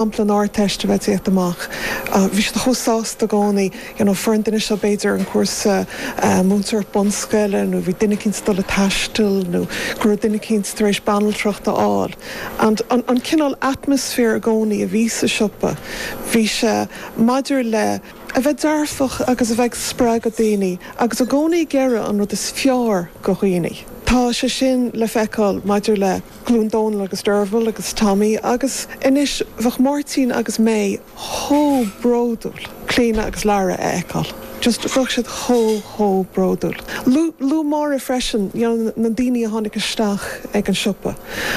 an Ardteist a bheith déanta amach. Bhí siad chomh sásta i gcónaí. You know fuair an duine seo b'fhéidir an cúrsa múinteoireachta bunscoile nó bhí duine eicínt ag dul ag taisteal nó go raibh duine eicínt tar éis banaltracht a fháil. And an cineál atmosphere i gcónaí a bhí sa siopa bhí sé maidir le. a bheith dearfach agus a bheith ag spreagadh daoine agus i gcónaí ag iarraidh an rud is fearr go dhaoine. Tá sé sin le feiceáil maidir le. ghlúin Dónal agus Dearbhail agus Tommy agus anois bheadh Máirtín agus May chomh bródúil Clíodhna agus Lara a fheiceáil just bheadh siad chomh, chomh bródúil. Luaigh Máire freisin you know na daoine a tháinig isteach ag an siopa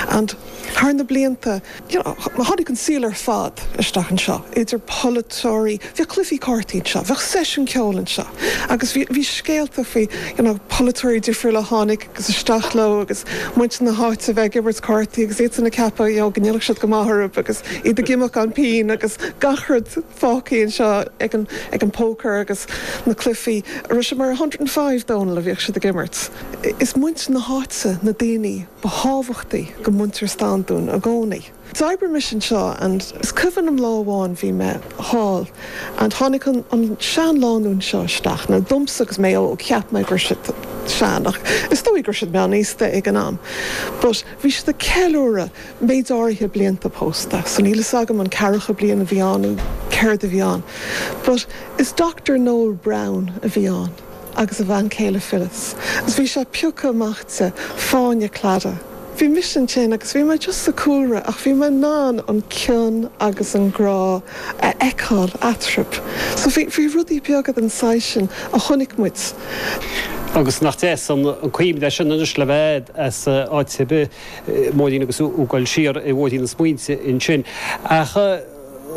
and thar na blianta you know tháinig an saol ar fad isteach anseo idir polaiteoirí, bhíodh cluifí cártaí anseo, bheadh seisiún ceoil anseo agus bhí scéalta faoi you know polaiteoirí difriúla a tháinig. agus isteach leo agus muintir na háite a bheith ag imirt cártaí agus iadsan ag ceapadh you know go ndéanfadh siad go maith orthu agus iad ag imeacht gan pingin agus gach rud fágtha anseo ag an ag an poker agus na cluifí arb é sin mar a hundred and five Dónal a bhíodh siad ag imirt. Is muintir na háite na daoine ba thábhachtaí go muintir Standún i gcónaí. D'oibrimis anseo and is cuimhin liom lá amháin bhí mé thall and tháinig an seanlánúin seo isteach. Now domsa agus mé óg cheap mé go raibh siad sean ach is dóigh go raibh siad meánaosta ag an am but bhí siad ag ceiliúradh méid áirithe blianta pósta so níl fhios agam an ceathracha bliain a bhí ann nó céard a bhí ann but is Doctor Noel Browne a bhí ann. agus a bhean chéile Phyllis agus bhí sé ag piocadh amach di fáinne Cladaigh. Bhí mise ansin agus bhí mé just sa cúlra ach bhí mé in ann an cion agus an grá a fheiceáil eatarthu. So bhí bhí rudaí beaga den saghas sin a chonaic muid. Agus nach deas an cuimhne é sin anois le bheith agat, a bit, móidín agus ag goil siar i mbóithrín na smaointe ansin. Ach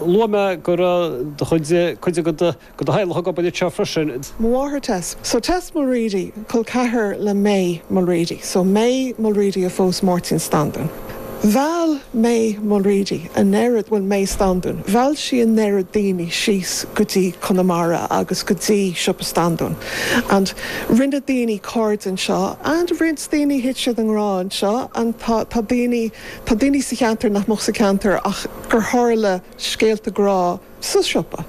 luaigh mé go raibh do chuid, cuid agat, go do theaghlach ag obair anseo freisin. Mo mháthair Tess. So Tess Mulready, col ceathar le May Mulready. So May Mulready a phós Máirtín Standún. Mheall May Mulready an oiread, bhuel May Standún, mheall sí an oiread daoine síos go dtí Conamara agus go dtí Siopa Standún and rinne daoine cairde anseo and roinnt daoine thit siad i ngrá anseo and tá daoine, tá daoine sa cheantar nach mbeadh sa cheantar ach gur tharla scéalta grá. sa siopa.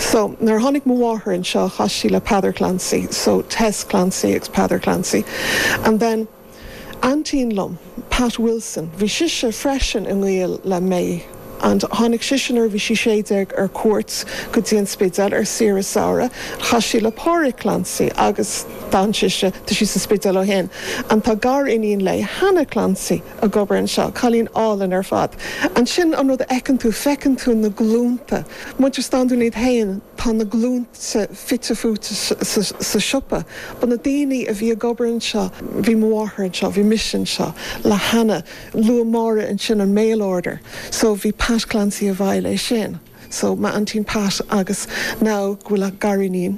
So, nuair a tháinig mo mháthair anseo, chas sí le Peadar Clancy, so Tess Clancy agus Peadar Clancy. And then, aintín liom, Pat Wilson, bhí sise freisin i ngaol le May and tháinig sise nuair a bhí sí sé déag ar cuairt go dtí an Spidéal ar saoire samhraidh and chas sí le Páraic Clancy agus d'fhan sise, tá sí sa Spidéal ó shin, and tá gar-iníon léi, Hannah Clancy. ag obair anseo. Cailín álainn ar fad. Ansin, an rud a fheiceann tú, feiceann tú na glúnta. Muintir Standún iad féin, tá na glúnta fite fuaite sa siopa. Ba na daoine a bhí ag obair anseo, bhí mo mháthair anseo, bhí mise anseo le hAnna. Luadh Máire ansin an mail order. So, bhí Pat Clancy i bhfeighil, é sin, so m'aintín Pat agus now go bhfuil a gariníon,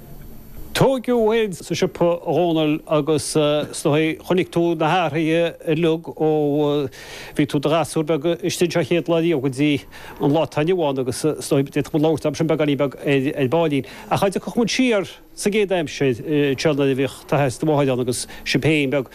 Tóigeadh ann sa siopa, a Dhomhnaill, agus chonaic tú na hathraithe uilig ó bhíodh tú i do ghasúr beag istigh anseo chéad lá riamh go dtí an lá atá inniu ann agus d'fhéadfadh muid labhairt air sin beagáinín beag ar ballín. Ach dá dtiocfadh muid siar sa gcéad aimsir, an seanduine a bhíodh, tá a fhios, do mháthair ann agus sibh féin beag.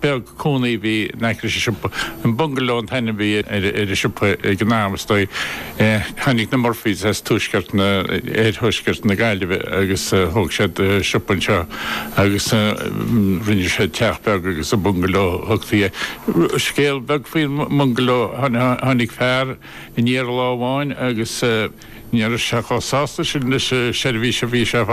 beag cónaí a bhí in aice leis an siopa. An Bungaló an t-ainm a bhí ar an siopa ag an am, is dóigh. Tháinig na Murphys as tuaisceart na, oir-thuaisceart na Gaillimhe agus thóg siad siopa anseo agus rinne siad teach beag agus an Bungaló a thugtaí air. Scéal beag faoin mBungaló, tháinig fear aniar lá amháin agus ní raibh sé chomh sásta sin leis an seirbhís a bhí sé a fháil.